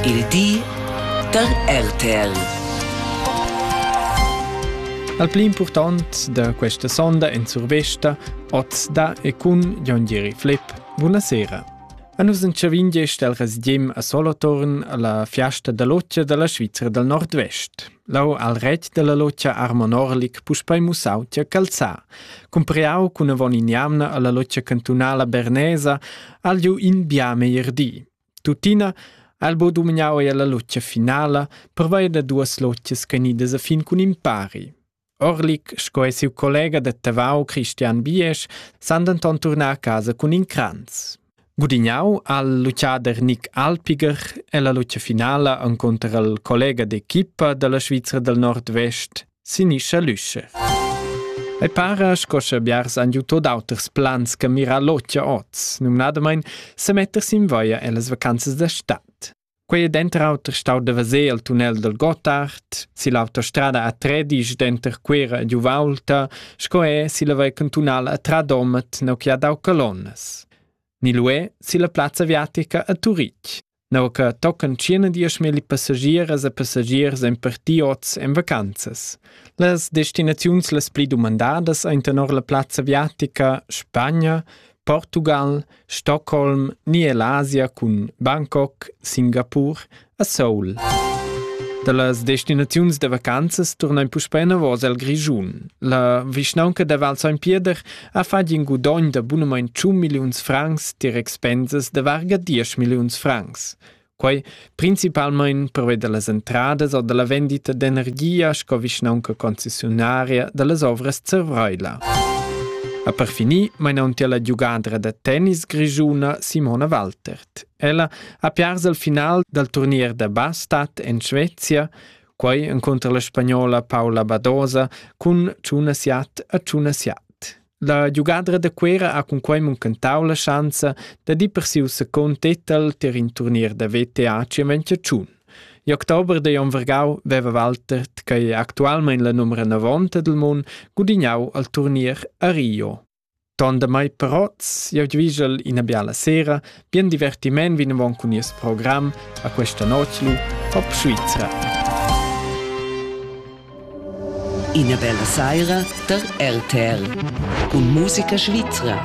Il di da RTL. Al pli impurtant da questa sonda en survesta, oz da e cun Jon Gieri Flipp. Buonasera. A nus entschavin gest el residiem a Solothurn alla fiasta da loccia dalla Svizra dal Nordvest. Lau al rett della loccia Armon Orlik puspei mussau tia calzà. Cumpreau cun avon in jamna alla loccia cantunala bernesa al giu in bia meir di. Tuttina ha'l bod dumgnà eir la lutgia finala pervia da duos lutschas gnidas a fin cun impari. Orlik sco e siu collega da Tavau Christian Biesch san denton turnar a casa cun in cranz. Gudignau al luchader Nick Alpiger e la lucia finala encunter al collega d'equipa dalla Svizra del Nord-Vest sinischa l'üsche. Ei para sco sche biars han giu tot auters plans che mirar l'otgia oz, numnadamain se metter sin via ellas vacanzas da stad. Quei è denter auter stau da vaser il tunnel del Gotthard, si l'autostrada a Tredisch denter Cuera e Giuvaulta, sco è si la vei cantunala a Tradomet neu che ha dau colonas. Ni luè si la plazza aviatica a Turich. Neu che tocan tschient diesch milli passagieras e passagiers ein parti oz en vacanzas. Las destinaziuns las pli dumandadas ein tenor la plazza aviatica Spagna, Portugal, Stockholm ni ell'Asia cun Bangkok, Singapur e Seoul. Da las destinaziuns da vacanzas turnain puspè enavos al Grischun. La vischnaunca da Val Saint Pieder ha fatg in gudogn da bunamain 100 milliuns francs tier expensas da varga 10 milliuns francs. Quai principalmein pervei dallas entradas o dalla vendita d'energia sco vischnaunca concessionaria dallas ovras Zervreila. A per finir mainauntia la giugadra da tennis grischuna Simona Waltert. Ella ha piars al final dal turnier da bastat en Svezia quei encunter la spagnola Paula Badosa cun Tuna Siat a Tuna Siat. La giugadra da Cuera ha cun quei muncentau la schanza da dir per siu second titel ter in turnier da VTA Cimentiaciun. In oktober de Jon Vergau veva Walter, che è actualmente la numero 90 del mondo, gudignau al turnier a Rio. Ton damai però jau dvigel ina biala sera, bien divertiment vinavon cun nies program a questa notg lu Pop Svizra. Ina bella saira da RTL cun musica svizra.